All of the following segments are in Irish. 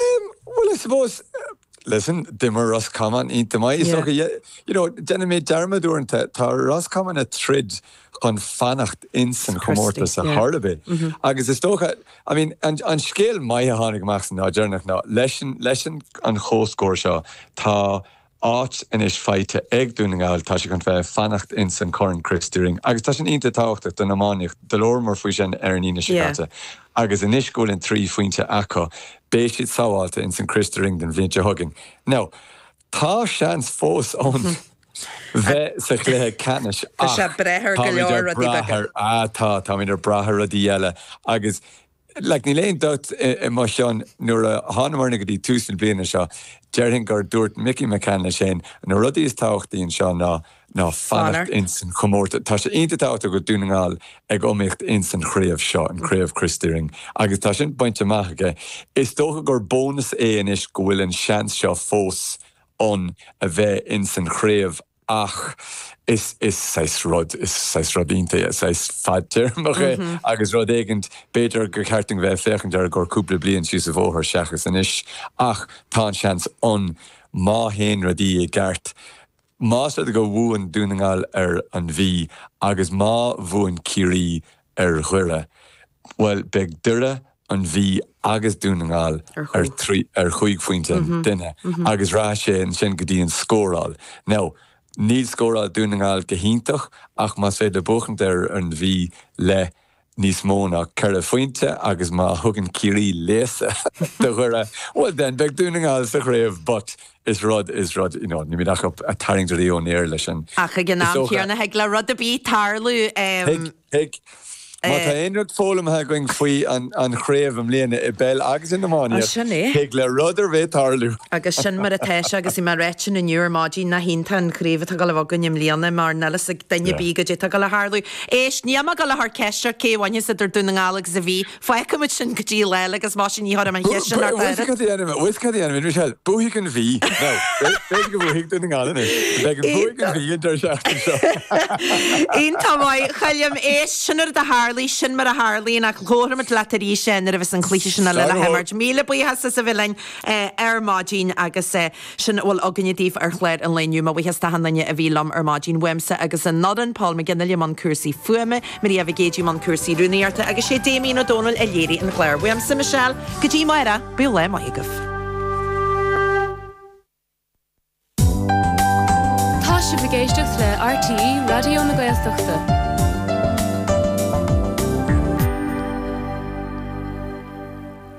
Em, bhuel, I suppose, listen, d'imir Ros Comáin iontach maith. Is dócha, yeah, you know, déanann mé dearmad uaireanta, tá Ros Comáin a' troid chun fanacht ins an chomórtas a chor a' bith. Agus is dócha, I mean, an, an scéal maith a tháinig amach san lá deireanach ná, leis an, leis an, an chomhscór seo, tá, Áit anois faighte ag Dún na nGall, tá sé chun bheith ag fanacht ins an Corn Christy Ring agus tá sin iontach tábhachtach don iománaíocht. Do labhramar faoi sin ar an Aoine seo caite. Agus anois go bhfuil an trí phointe acu, beidh siad sábháilte ins an Christy Ring don bhliain seo chugainn. Now, tá seans fós ann bheith sa chluiche ceannais ach tá, táimid ag brath ar rudaí eile agus Like, níl aon dabht i mo cheann, nuair a thánamairne go dtí tús na bliana seo, déarfainn gur dúirt Mickey McCann leis féin, na rudaí is tábhachtaí anseo ná, ná fanacht insan chomórtas. Tá sé iontach tábhachtach go bhfuil Dún na nGall ag iomaíocht insan chraobh seo, an Chraobh Christy Ring, agus tá sin bainte amach aige. Is dócha gur bónas é anois go bhfuil an seans seo fós ann a bheith insan chraobh. Ach is saghas rud, is saghas rud iontach é, saghas fadtéarmach é agus rud éigin, b'fhéidir gur cheart dúinn bheith ag féachaint air i gcomhair cúpla bliain síos an bóthar seachas anois. Ach tá an seans ann, má théann rudaí i gceart, más rud é go bhuann Dún na nGall ar an Mhí agus má bhuann Ciarraí ar Dhoire, Bhuel beidh Doire, An Mhí agus Dún na nGall ar chúig phointe an duine agus rachaidh sé ansin go dtí an scóráil. Now, níl scóráil Dhún na nGall go hiontach ach más féidir buachaint ar an Mhí le níos mó ná ceithre phointe agus má thugann Ciarraí léasadh do Dhoire, bhuel then beidh Dún na nGall sa chraobh but is rud, is rud you know, nílimid ach ag tarraingt rudaí ón aer leis sin. Ach ag an am chéanna, thig le rud ar bith tarlú. Thig. Thig. Má tá aon rud foghlamtha againn faoi an chraobh i mbliana, i bpeil agus in iománaíocht, thig le rud ar bith tarlú. Agus sin mar atá sé agus bhí mé ag ráit inniu ar maidin nach iontach an chraobh atá ag gabháil a bheith againn i mbliana mar níl fhios ag duine ar bith cad é atá ag gabháil a tharlú. Éist, níl mé ag gabháil a chur ceist seo cé a bhainfeas idir Dún na nGall agus an Mhí, Fágfaimid sin go dtí lá eile agus más sin ní chuirfidh mé an cheist sin thart air. Bhuaigh cad é ainmid, bhuaigh cad é ainmid Michelle? Bhuaigh an Mhí. Nó, b'fhéidir go bhuaigh duine gan anois. Beidh an bua ag an Mhí an tseachtain seo. Iontach maith. Chaith liom éist. Sin mar do tharlaigh, sin mar a tharlaíonn ach labharfaimid leat arís é nuair a bheas an cluiche sin á lua le himirt. Míle buíochas as a bheith linn ar maidin agus. Sin a bhfuil againne daoibh ar chlár an lae inniu. Mo bhuíochas d'achan duine a bhí liom ar maidin, uaimse agus ón fhoireann, Paul McGinley i mbun cúrsaí fuaime, Maria Mhic Géidigh i mbun cúrsaí rúnaíochta agus sé Damien Ó Dónaill a léirigh an clár. Uaimse, Michelle, go dtí amárach, bíodh lá maith agaibh. Tá sibh ag éisteacht le RTÉ Raidió na Gaeltachta.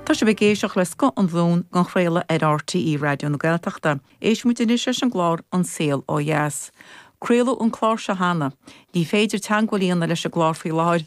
Tá sibh ag éisteacht le scoth an Luain dhá chraoladh ar RTÉ Raidió na Gaeltachta. Éistfidh muid anois leis an gclár An Saol Ó Dheas. Craoladh an clár seo cheana. Ní féidir teangmháil a dhéanamh leis an gclár faoi láthair.